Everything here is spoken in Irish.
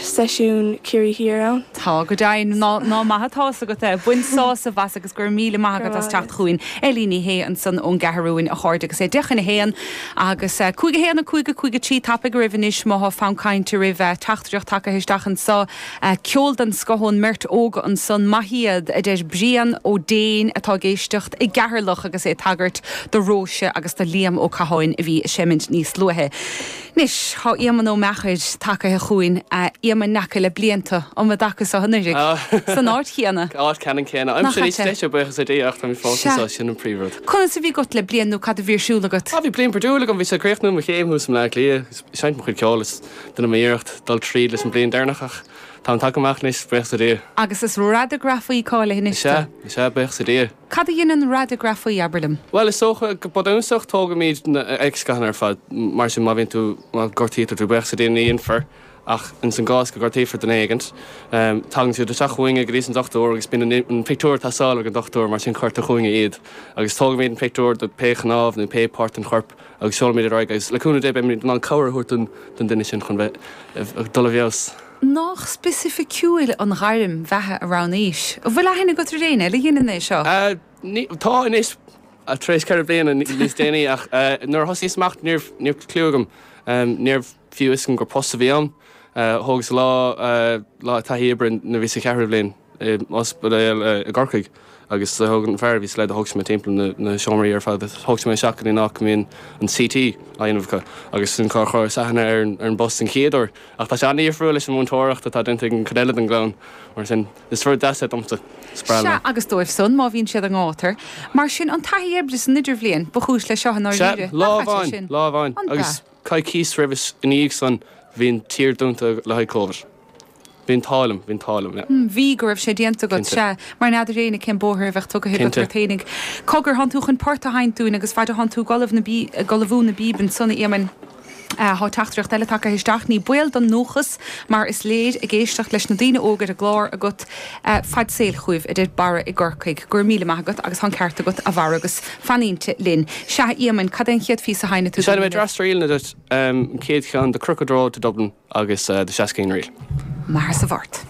seisiún Ciarraí Thiar ann. Tá, go deimhin. Ná ná maith atá 's agat é. Bain sásamh as agus go raibh míle maith agat as teacht chugainn. Eilín Ní Shé ansan ón gCeathrúin, a chairde, agus é deich chun a haon agus cúig a haon, cúig a cúig a trí. Tapaíg oraibh anois má tá fonn cainte oraibh teachtaireacht tagaithe isteach anso. Ceol den scoth ón mbeirt óga ansan. Maith iad, a deir Brian Ó Déin atá ag éisteacht i gCeatharlach agus é ag tagairt do Róise agus do Liam Ó Catháin a bhí ag seimint níos luaithe. Anois tá Éamonn Ó Meachair tagaithe chugainn, a Éamoinn, n'fheaca le bliain tú, um an dtaca so anuiridh? San áit chéanna? Áit ceannan céanna. Aimsir níos deise, buíochas le Dia, ach táimid fós anseo, sin an príomhrud. Conas a bhí agat le bliain nó cad a bhí ar siúl agat? Bhí bliain bhruidiúil agam, bhíos ag críochnú mo chéim thuas i mBleá Cliath agus ag seinnt mo chuid ceoil is déanamh m'iarracht dul tríd leis an bliain deireanach ach táim tagtha amach anois, buíochas le Dia. Agus is radagrafaí cáilithe anois tú? Is ea, is ea, buíochas le Dia. Cad a dheineann radagrafaí, abair liom? Bhuel, is dócha, go bunúsach, tógaimíd na x-ghathanna ar fad. Mar sin, má bhíonn tú, má ghortaítear tú, buíochas le Dia, ní dhéanfar, ach ins an gcás go ngortaítear duine éigint, tagann siad isteach chugainne go dtí's an dochtúir agus bíonn an pictiúir ag teastáil ag an dochtúir, mar sin, cuirtear chugainne iad agus tógaimíd an pictiúir de pé chnámh nó pé páirt den chorp. agus seolaimid iad ar aghaidh agus, le cúnamh Dé, beimid in ann cabhair a thabhairt don duine sin chun bheith ag dul i bhfeabhas. Nach speisificiúil an ghairm bheatha a roghnaís? An bhfuil aithne agat ar éinne eile a dheineann é seo? Ní, tá anois, tar éis ceithre bliana níos déanaí, ach nuair a thosnaíos amach ní raibh clue agam, ní raibh fiú a fhios agam gur post a bhí ann. Thógas lá taithí oibre nuair a bhíos sa cheathrú bhliain. i ospidéal i gCorcaigh agus thug an fear a bhíos leis, do thug sé mé timpeall na seomraí ar fad agus thug sé mé isteach ins an áit go mbíonn an CT á dhéanamh acu agus sin cár chuireas aithne ar an bpost den chéad uair. Ach tá sé an-difriúil leis an mhúinteoireacht atá déanta ag an chuid eile den gclann mar sin is rud deas é domsa, spreagann Sea, mé. agus dóibh san, má bhíonn siad i ngátar. Mar sin an taithí oibre san idirbhliain ba chúis leis seo i Sea, ndáiríre, lá nach ait é amháin, sin? lá amháin An agus bhea. coicís roimhe is i ndiaidh san bhí an tír dúnta le haghaidh Covid. Bhí an t-ádh liom, bhí an t-ádh liom, yeah. M, Bhí, go raibh sé déanta agat. Cinnte. Sea. Mar n'fheadar éinne cén bóthar a bheadh tugtha agat Cinnte. ort fhéinig. Cogar, thán tú chun port a sheinnt dúinn agus faid a thán tú ag ullamh na bí, ag ullamhú na bpíob ansan, a Éamainn, eh, thá teachtaireacht eile tagtha isteach, ní baol don ndúchas mar is léir ag éisteacht leis na daoine óga ar an gclár agat, eh, faid saoil chugaibh, a deir Barra i gCorcaigh. Go raibh míle maith agat agus thá an ceart agat, a Bharra, agus fan inti linn. Sea, a Éamainn, cad é an chéad phíosa a sheinnfidh tú Seinnfidh dúinn mé inniu? dreas ríleanna duit, em, an chéad cheann, The Crooked Road to Dublin. agus The Shaskeen Reel. Mathair sa Mhart.